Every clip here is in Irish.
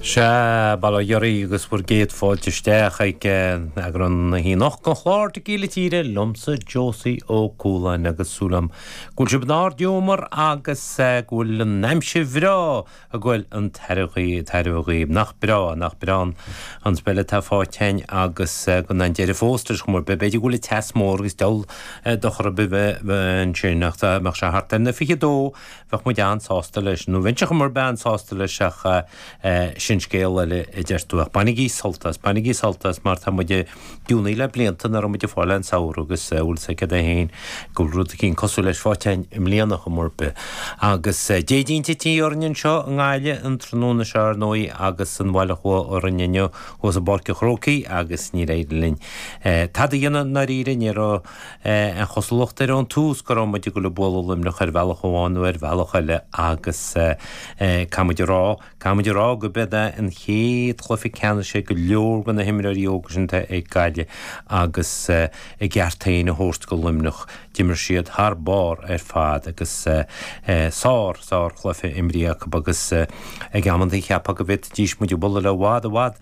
Sea, bail ó Dhia oraibh agus bhur gcéad fáilte isteach ag eagrán na hoíche anocht den chlár Tequila Tíre liomsa, Josie Ó Cualáin, agus súil agam go bhfuil sibh in ardghiúmar agus go bhfuil an aimsir bhreá ag goil chun tairbhe dhaoibh. Nach breá, nach breá an speil atá fáighte againn agus gan aon deireadh fós ar chuma ar bith, b'fhéidir go bhfuil an teas mór agus diabhal dochar ar bith ansin ach dá mbeadh sé thart ar na 22, Bheadh muid an-sásta leis, nó bheinnse ar chuma ar bith an-sásta leis ach sin scéal eile, a deir tú. Ach bainigí sult as, bainigí sult as mar tá muid ag giúnaíl le blianta nach raibh muid ag fáil aon samhradh agus bhuel is é céard é féin go bhfuil rud eicín cosúil leis faighte a'inn i mbliana ar chuma ar bith. Agus déidín tite orainn anseo i nGaillimh an tráthnóna seo ar ndóigh agus an bhail a chuaigh orainn inniu thuas i bPáirc a' Chrócaigh agus níor éirigh linn tada a dhéanamh, ndáiríre, ní raibh. Aon chosúlacht ar an tús go raibh muid ag dul ag bualadh Luimneach ar bhealach amháin nó ar bhealach eile agus caithfidh muid a rá, caithfidh muid a rá gurbh é an chéad chluiche ceannais ag go leor de na himreoirí óga sin atá ag Gaillimh agus a gceart féin a thabhairt do Luimneach. D'imir siad thar barr ar fad agus sár, sár chluiche a imríodh acu agus ag amantaí cheapfá go bhféadfaidís muid a bhualadh i bhfad, i bhfad.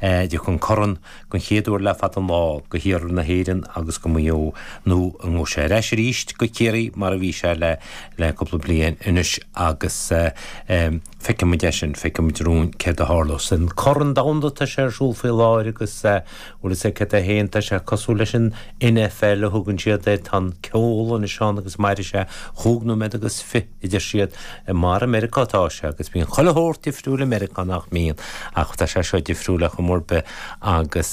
Dtiocfaidh an Corn, den chéad uair le fada an lá, go hiarthar na hÉireann agus go Maigh Eo, nó an ngabhfaidh sé ar ais arís go Ciarraí mar a bhí sé le cúpla bliain anois agus feicfidh muid é sin, feicfidh muid romhainn céard a tharlós. An Corn Domhanda tá sé ar siúl faoi láthair agus bhuel is é céard é fhéin, tá sé cosúil leis an NFL a thugann siad air, tá an ceol anois ann agus mairfidh sé chúig nóiméad agus fiche. a deir siad mar i Meiriceá atá sé agus bíonn chuile shórt difriúil i Meiriceá nach mbíonn ach tá sé seo difriúil ar chuma ar bith agus